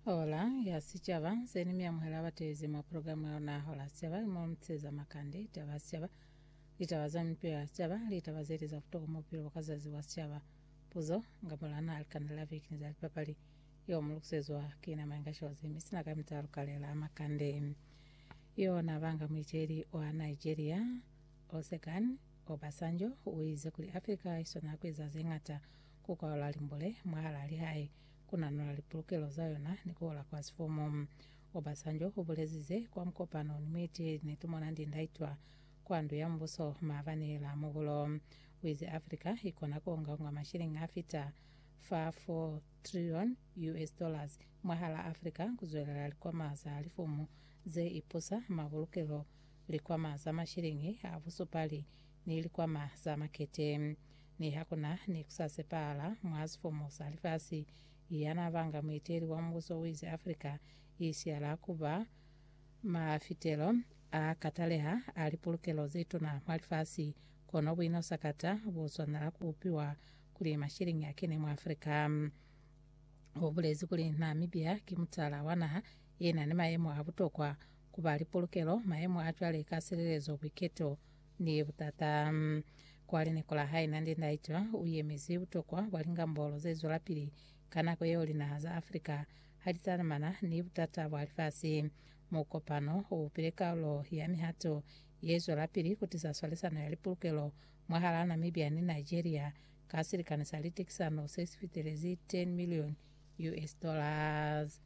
Hola ya Sicaba, se ni miamuhela batezi mwa programu ya luna Hola ya Sicaba, imo luteza makande, litaba ya sicaba, litaba za mipilo ya sicaba, litaba zeli za butokwa mwa bupilo bwa ka zazi bwa sicaba, puzo, nga mulana, likanda la viki ni za lipapali. Yo mu lukusezwa ki na Mainga Shozi, mi sina ka mita ya lukale la makande. Yo na banga muiteli wa Nigeria, Osekan Obasanjo, uize kuli Africa iswanela kueza zeñata ku kwaola limbule mwahalaa lihae, ku nanola lipulukelo za yona ni ku ola kwa sifumu. Obasanjo u bulezize kwa mukopano ni muiteli ne tu mona ndi ndaitwa kwa Ndu ya Mubuso maabani la muhulo. U ize Africa i kona ku ongaonga mashilingi a fita fa 4 trilioni US dollars mwahalaa Africa ku zwelela likwama za lifumu ze ipusa mabulukelo, likwama za mashilingi a busupali ni likwama za makete. Niha ku na ni ku sa sepahala mwa sifomo sa lifasi, ya n'a banga mueteli wa mubuso u ize Afrika i siyala ku ba mafitelo a kataleha a lipulukelo ze tuna mwa lifasi, kono buino sakata bu swanela ku upiwa kuli mashiliñi a kene mwa Afrika. U bulezi kuli Namibia ki mutala wa naha ye na ni mayemo a butokwa ku ba lipulukelo, mayemo a cwale ka silelezo, buiketo, Ni butata kwa lineko la hae Nandi Ndaitwah, u yemezi butokwa bwa lingambolo ze zwelapili ka nako yeo linaha za Africa ha li talamana ni butata bwa lifasi. Mukopano u bile kalulo ya mihato ye zwelapili ku tisa swalisano ya lipulukelo mwahalaa Namibia ni Nigeria ka silikani sa litekisano se si fitelezi 10 million US dollars.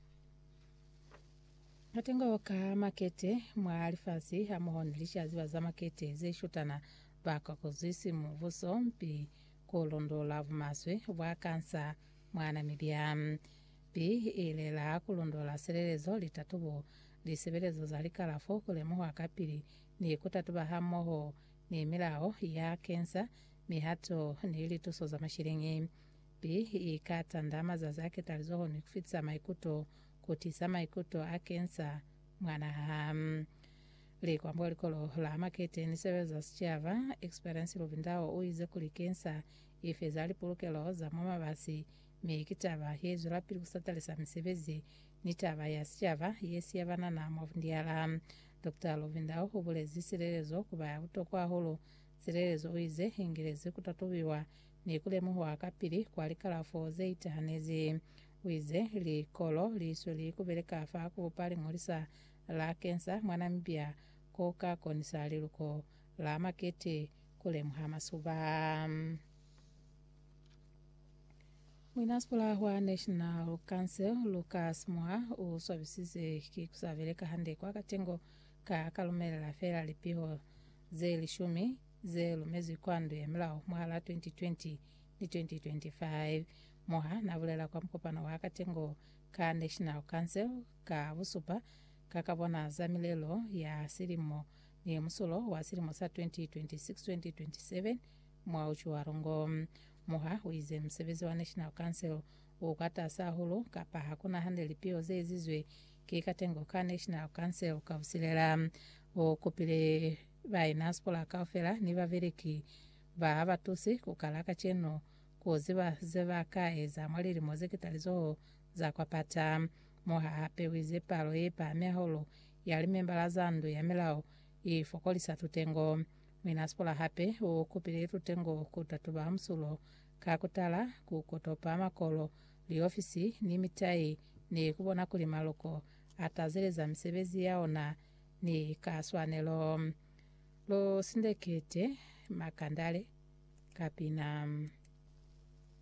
Matengo ka makete mwa lifasi hamoho ni licaziba za makete ze shotana ba ka kozwisi mubuso mpi ku londola bumaswe bwa kansa mwa Namibia. Mpi i lela ku londola silelezo, litatubo, lisebelezo za likalafo, ku lemuha kapili ni ku tatuba hamoho ni milao ya kensa, mihato ni lituso za masheleñi. Mpi i ka tanda mazazi a ketalizoho ni ku fitisa maikuto kutiza maikuto a kensa mwana ha li kwa mbo likolo la Makete ni Sebele za Sicaba, Experience Lubindao u ize kuli kensa i feza lipulukelo za mwa mabasi mi ki taba ye zwelapili ku satalisa misebezi ni taba ya sicaba ye siya banana mwa bundiala. Doctor Lubindao u bulezi silelezo ku ba ya butokwa hahulu. Silelezo u ize i ngilezi ku tatubiwa ni ku lemuhwa kapili kwa likalafo ze itahanezi. U ize, Likolo li sweli ku beleka fa ku bupa liñolisa la kensa mwa Namibia ko ka konisa liluko la makete ku lemuha masuba. Muinasipula wa National Council, Lucas Moa, u swabisize ki ku sa beleka hande kwa katengo ka ka lumelela feela lipiho ze lishumi ze lumezwi kwa ndu ya milao mwahala 2020 ni 2025. Moha na bulela kwa mukopano wa katengo ka National Council ka busupa ka ka bona za milelo ya silimo ni musulo wa silimo sa 2026-2027 mwa Utjiwarongo. Moha u ize musebezi wa National Council u kwa tasi hahulu kapa ha kuna hande lipio ze ezizwe ki katengo ka National Council ka busilela. U kupile Ba inaspora kaufela ni babeleki ba ha ba tusi ku kala kacenu ku ziba ze ba ka eza mwa lilimo ze ketalizoho za kwa pata. Mo ha hapewize palo ye pahami hahulu ya limembala za ndu ya milao, i fokolisa tutengo. Muinaspora hape u kupile tutengo ku tatuba musulo ka ku tala, ku kotopa makolo, liofisi, ni mitai, ni ku bona kuli maloko a tazeleza misebezi ya ona Ni ka swanelo, lu sindekete makandale ka pina.